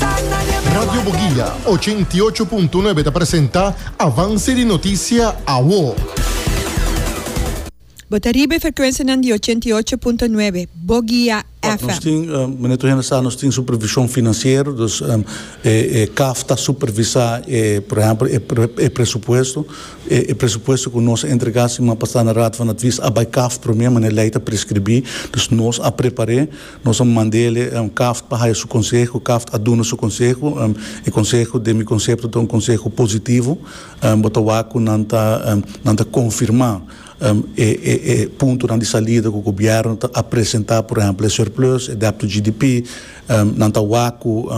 Radio Boguilla, ochenta i ocho punto nuebe ta presenta avanse di noticia awo. Bo ta riba e frecuencianan di ochenta i ocho punto nuebe Boguilla Nos FM. tin, meneer Trujena sa, nos tin supervision financiero, dus e caf ta supervisa e, por ehempel, e pre, e presupuesto, e presupuesto cu nos a entrega siman pasa na raad van advies a bay caf prome, meneer Ley ta prescribi, dus nos a prepare, Nos a mand'e kaf pa haya su konseho. Kaf a duna su konseho. E konseho, den mi konsepto, ta un konseho positivo. Bo ta wak ku nan ta nan ta konfirmá e puntonan di salida ku gobièrnu ta a presentá, por ehèmpel e surplus, e dèpto GDP. Nan ta wak ku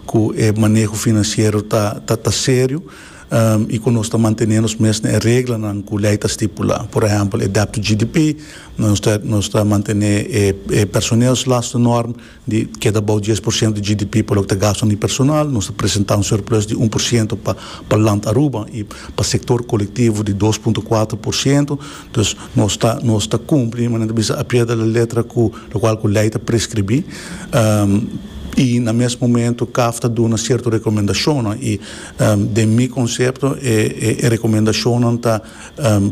ku e maneho finansiero ta ta serio. i ku nos ta mantené nos mes na e reglanan ku lei ta stipulá. Por ehèmpel, e dèptu GDP, nos ta nos ta mantené e e personeelslastennorm di keda bou dies por siento di GDP pa loke ta gastu na e personal, nos ta presentá un surplus di un por siento pa pa Land Aruba i pa sektor kolektivo di dos punto kuater por siento. Dus nos ta nos ta kumpli manera ta bisa a pie de la letra ku lokual ku lei ta preskribí i na mes momentu kaf ta duna sierto rekomendashonnan i Den mi konsepto e rekomendashonnan ta,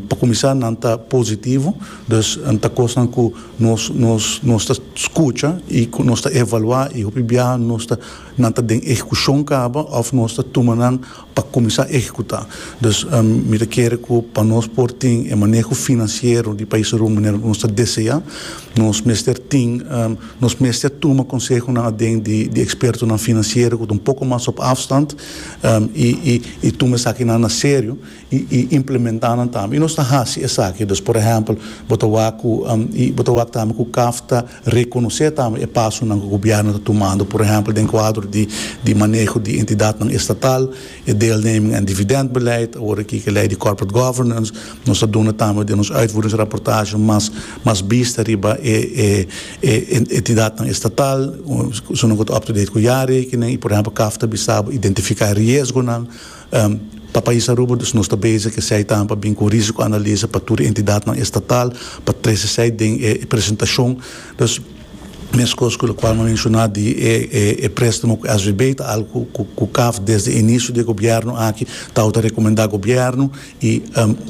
pa kuminsá nan ta positivo, dus ta kosnan ku nos nos nos ta skucha i ku nos ta evaluá i hopi biaha nos ta nan ta den ehekushon kaba òf nos ta tuma nan pa kuminsá ehekutá. Dus mi ta kere ku pa nos por tin e maneho finansiero di paisRumania manera ku nos ta deseá nos mester tin. Nos mester a tuma konsehonan aden di ekspertonan finansiero ku ta un poko mas op afstand i tuma esakinan na serio i implementá nan tambe. I nos ta hasi esaki. Dus por ehèmpel, bo ta wak ku i bo ta wak tambe ku caf ta rekonosé tambe e pasonan ku gobièrnu ta tumando, por ehèmpel den kuadro di maneho di entidatnan estatal E deelneming en dividendbeleid, awor aki ke lei di corporate governance, nos ta duna tambe den nos uitvoeringsrapportage mas mas bista riba e e e entidatnan estatal, su nan ku ta up to date ku jaarrekening i por ehempel kaf ta bisa bo identifica e riesgonan pa pais Aruba, dus nos ta bezig esei tambe pa bin ku risicoanalise pa tur e entidadnan estatal pa trese esei den e presentacion. Mescos cu locual no menciona di e prestamo cu SVB ta algo cu caf desde inicio di e gobierno aki tawata recomenda gobierno y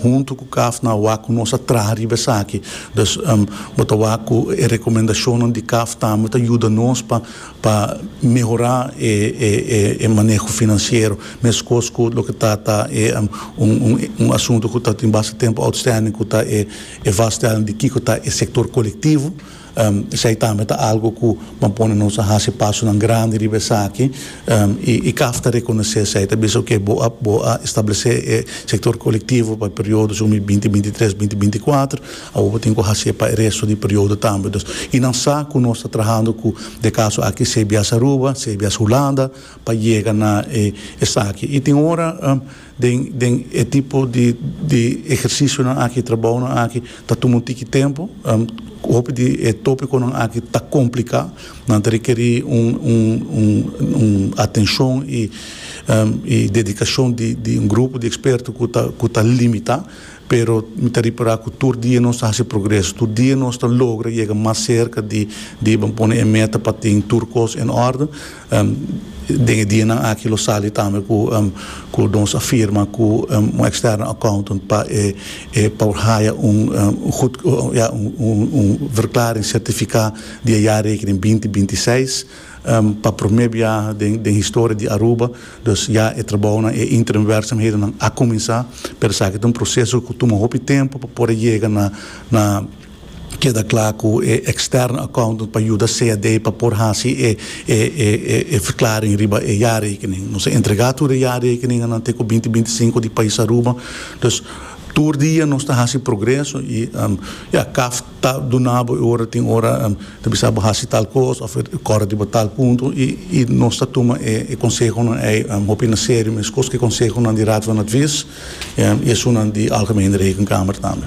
hunto cu caf nan a wak cu nos a traha riba esaki. Dus bo ta wak cu e recomendacionnan di caf tambe ta yuda nos pa mehora e maneho financiero mescos cu loke ta ta e un asunto cu ta tin basta tempo outstanding cu ta e vaststelling di kico ta e sector colectivo. Esei tambe ta algu ku ban pone nos a hasi pasonan grandi riba esaki, i caf ta rekonosé esei, ta bisa oke bo a bo a establesé e sektor kolektivo pa e periodo su mi binti binti tres binti binti kuater, awor bo tin ku hasié pa e resto di periodo tambe dus i nan sa ku nos ta trahando ku de kaso aki cbs Aruba, cbs Hulanda pa yega na e esaki i tin ora. Den den e tipo di di ehercisionan aki, trabounan aki ta tuma un tiki tempo. Hopi di e topiconan aki ta complica, nan ta rekeri un un un un atencion y y dedicacion di di un grupo di experto cu ta cu ta limita, pero mi ta repara cu tur dia nos ta haci progreso, tur dia nos ta logra yega mas cerca di di ban pone e meta pa tin tur cos en orde. Den e dianan aki lo sali tambe ku nos a firma ku un externo accountant pa e por haya un verklaring sertifiká di e jaarrekening binti binti i seis. Pa promé biaha den historia di Aruba dus ya e trabounan e interim werksamhedennan a kuminsá pero esaki ta un proseso ku tuma hopi tempu pa por a yega na Keda cla cu e extern accountant pa yuda CAD pa por haci e verklaring riba e jaarrekening. Nos a entrega tur e jaarrekeninganan te cu binti binticinco di pais Aruba. Dus, tur dia nos ta haci progreso y ja, caf ta duna bo e ora tin ora ta bisa bo haci tal cos of e cora riba tal punto y nos ta tuma e consehonan ei hopi na serio mescos cu e consehonan di Raad van Advies y esunnan di Algemene Rekenkamer tambe.